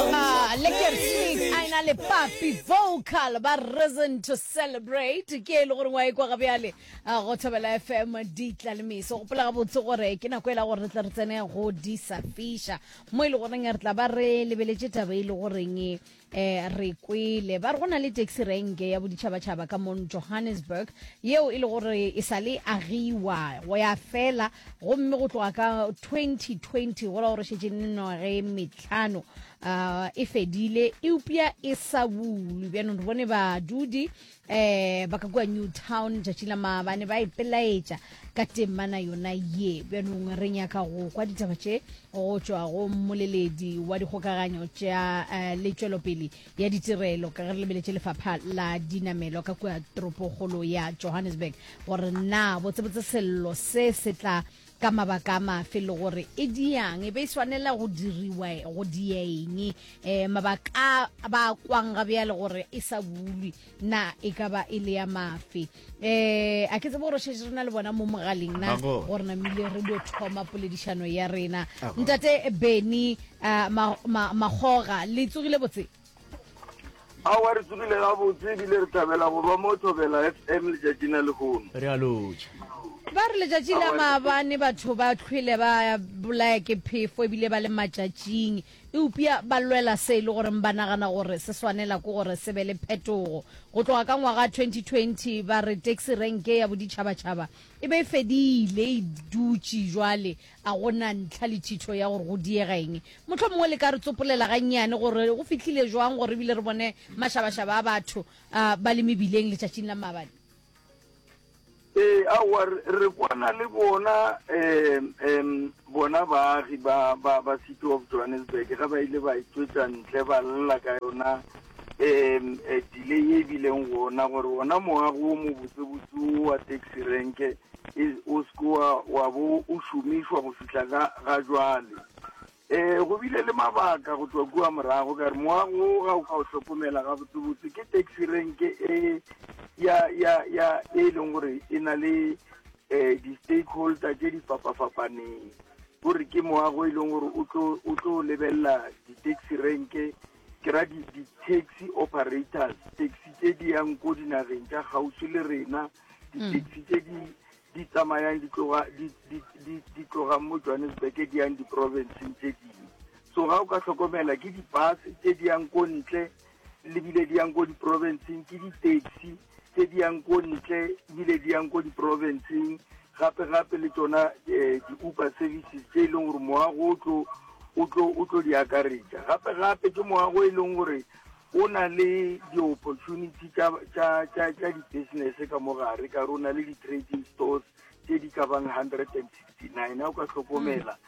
Ah, le kertig a ena le papi vocal ba reason to celebrate ke e le gore wa e kwa ga bjale a go thobela fm di tla le meso gopola ga botse gore ke nako e la gore re tle re tsene go di sa fiša mo e le goreng re tla ba re lebeletše taba e le goreng eh re kwele ba re go na le taxi rank ya boditšhabatšhaba ka mon johannesburg yeo e le gore e sa le agiwa go ya fela gomme go tloga ka 2020 go la gore šetše nnoge hlano uh, e fedile eupša e sa bulwe bjanong re bone badudi um ba ka kua new town tšatši la maabane ba ipelaetša ka temana yona ye bjanong re nyaka go kwa ditaba tše go tšwa go mmoleledi wa dikgokaganyo tša uh, le tšwelopele ya ditirelo ka ge re lebeletše lefapha la dinamelo ka kua toropogolo ya johannesburg gore na botsebotse sello se se tla Ka mabaka a mafe le gore e diang? E be e swanela go diriwa go dieng? E, mabaka a ba a kwang ga bjale gore e sa bulwi na e ka ba e le ya mafe? E, a ke tsebe gore o šetše re na le bona mo mogaleng na Mago. gore namile re dio thoma poledišano ya rena. Mago. Ntate Benny uh, ma, ma, Magoga, le tsogile botse? aowa re tsogile gabotse ebile re thabela go ba mo thobela fm letšatšing la lehono re a lotša ba re letšatši la maabane batho ba tlhwele ba bolaya ke phefo ebile ba le matšatšing eupša ba lwela se e le goreng ba nagana gore se swanela ke gore se be le phetogo go tloga ka ngwaga 2020 ba re taxi renke ya boditšhabatšhaba e be e fedile e dutše jwale A go na ntlha le thitho ya gore go diega eng? Mohlomongwe le ka re tsopolela gannyane gore go fihlile jwang gore ebile re bone mašabašaba a batho a ba le mebileng letšatšing la maabane. Ee, aowa, re, re kwana le bona um um bona baagi ba, ba, ba City of Johannesburg ge ba ile ba e tšwetša ntle ba lla ka yona um delay ye e bileng gona gore wona moago o mobotsebotse o wa taxi renke o seke wa bo o šomišwa go fihla ga ga jwale um go bile le mabaka go tswa kua morago ka re moago o ga o ka o hlokomela ga botsebotse ke taxi renke e ya ya ya e leng gore e na le um di-stakeholder tse di fapafapaneng gore ke moago e leng gore o tlo lebelela di-taxi renke Ke ra di, di taxi operators, taxi tše di yang ko dinageng tša kgauswi le rena, di-taxi tše di di tsamayang di tloga di di di di tlogang mo Johannesburg di yang di-provinceng tše dingwe. So ga o ka hlokomela ke di-bus tše di yang ko ntle lebile di yang ko di-provinceng ke di-taxi tse di yang ko ntle ebile di yang ko diporofenseng gape gape le tsona eh, di-uber services tse e leng gore moago o tlo di akaretša gape gape ke moago e leng gore o na le di-opportunity tša di-business ka mo gare ka re o na le di-trading stores tse di ka bang hundred and sixty nine a o ka tlhokomela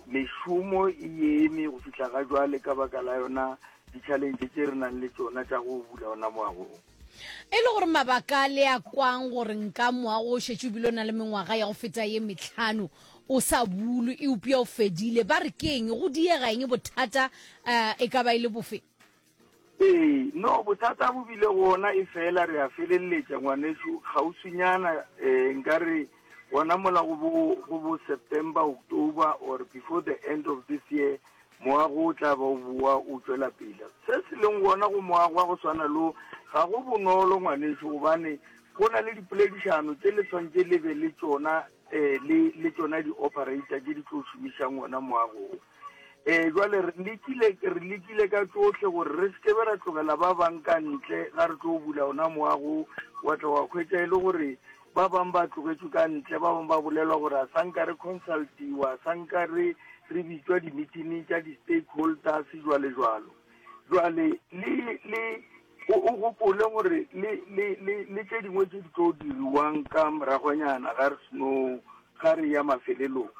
mešomo e eme go fitlha ga jwale ka baka la yona di-challenge tse re nang le tsona tša go bula ona moagong E le gore mabaka le a kwang gore nka moago o šetše o bile o na le mengwaga ya go feta ye metlhano o sa bulwe eupša o fedile ba re ke eng go diega eng bothata um e ka ba e le bofe Ee, no, bothata bo bile gona e fela re a feleletša ngwanešu kgauswinyana, um nka re gona mola go bo, go bo September, October or before the end of this year Moago o tla ba o boa o tšwela pele. Se se leng gona go moago wa go swana le wo ga go bonolo, ngwanešu, gobane go na le dipoledišano tše le swanetše le be le tšona, um le, le tšona di-operator tše di tlo šomišang wona moago wo. Um jwale re lekile, re lekile ka tšohle gore re se ke be ra tlogela ba bang ka ntle ga re tlo bula wona moago wo. Wa tla wa hwetša e le gore Ba bang ba tlogetšwe ka ntle, ba bang ba bolelwa gore a sa nka re consultiwa, a sa nka re, re bitšwa dimitining tša di-stakeholders, jwalejwalo. Jwale, le, le, o, o gopole gore le, le, le, le tše dingwe tše di tlo diriwang ka moragonyana ga re seno, ga re ya mafelelong.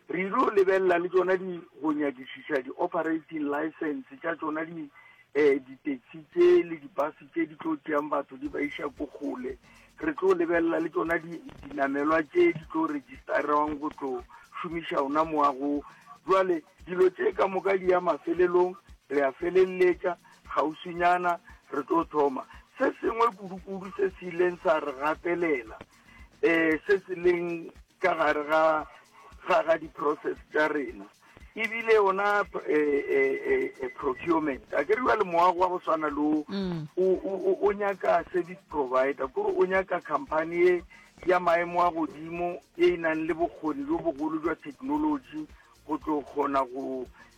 Re yilo lebelela le tšona di, go nyakišiša di-operating license tša tšona di, eh, di-taxi tše le di-bus tše di tlo tšeang batho di ba iša ko kgole. Re tlo lebelela le tšona di, dinamelwa tše di tlo registerwang go tlo šomiša ona mowa go. Bjale, dilo tše ka moka di ya mafelelong, re a feleletša, kgauswinyana re tlo thoma. Se sengwe kudukudu se se ileng sa re gapelela, um se se leng ka gare ga ga ga di-process tša rena ebile yona eh, eh, eh, procurement a ke riwa le moago wa go swana lo mm. o nyaka service provider kore o nyaka company e ya maemo a godimo e e nang le bokgoni jo bogolo jwa technology go tlo kgona go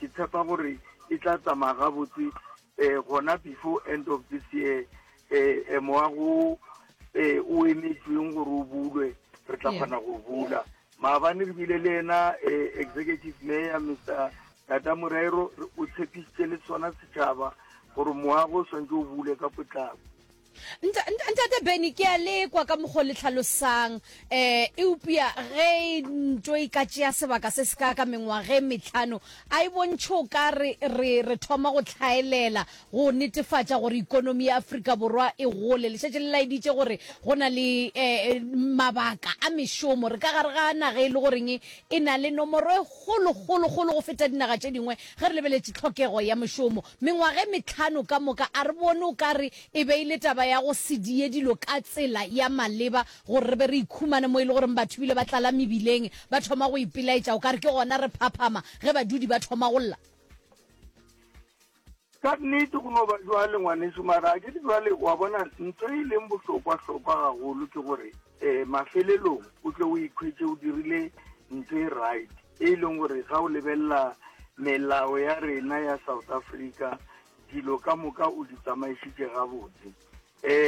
Ke tshepa gore e tla tsamaya gabotse um gona before end of this year um mowa go um o emetsweng gore o bulwe re tla kgona go bula maabane re bile le ena um executive mayor mr tata morero o tshepisitse le sona setšhaba gore moago o swantse o bule ka potlako Ntate Benny, ke a lekwa ka mokgwa le tlhalosang eh eupša ge ntwe e ka tšea sebaka se se ka ka mengwage metlhano a e bontšhe o ka re re re thoma go tlhaelela go netefatša gore ikonomi ya Afrika Borwa e gole. Le šetše le laeditše gore go na le eh mabaka a mešomo re ka gare ga naga e le goreng e na le nomoro e kgolo kgolo kgolo go feta dinaga tše dingwe ge re lebeletše tlhokego ya mešomo. Mengwaga e mehlano ka moka, a re bone o ka re e be e le taba ya go se die dilo ka tsela ya maleba gore re be re ikhumane mo e le goreng batho bile ba tlala mebileng, ba thoma go ipelaetša o ka re ke gona re phaphama ge badudi ba thoma go lla. Ka nnete go no ba bjale, ngwanešu, mara akere bjale wa bona ntho e leng bohlokwa-hlokwa gagolo ke gore um mafelelong o tle o ikhwetše o dirile ntho e right. E leng gore ga o lebelela melao ya rena ya South Africa dilo ka moka o di tsamaisitše gabotse.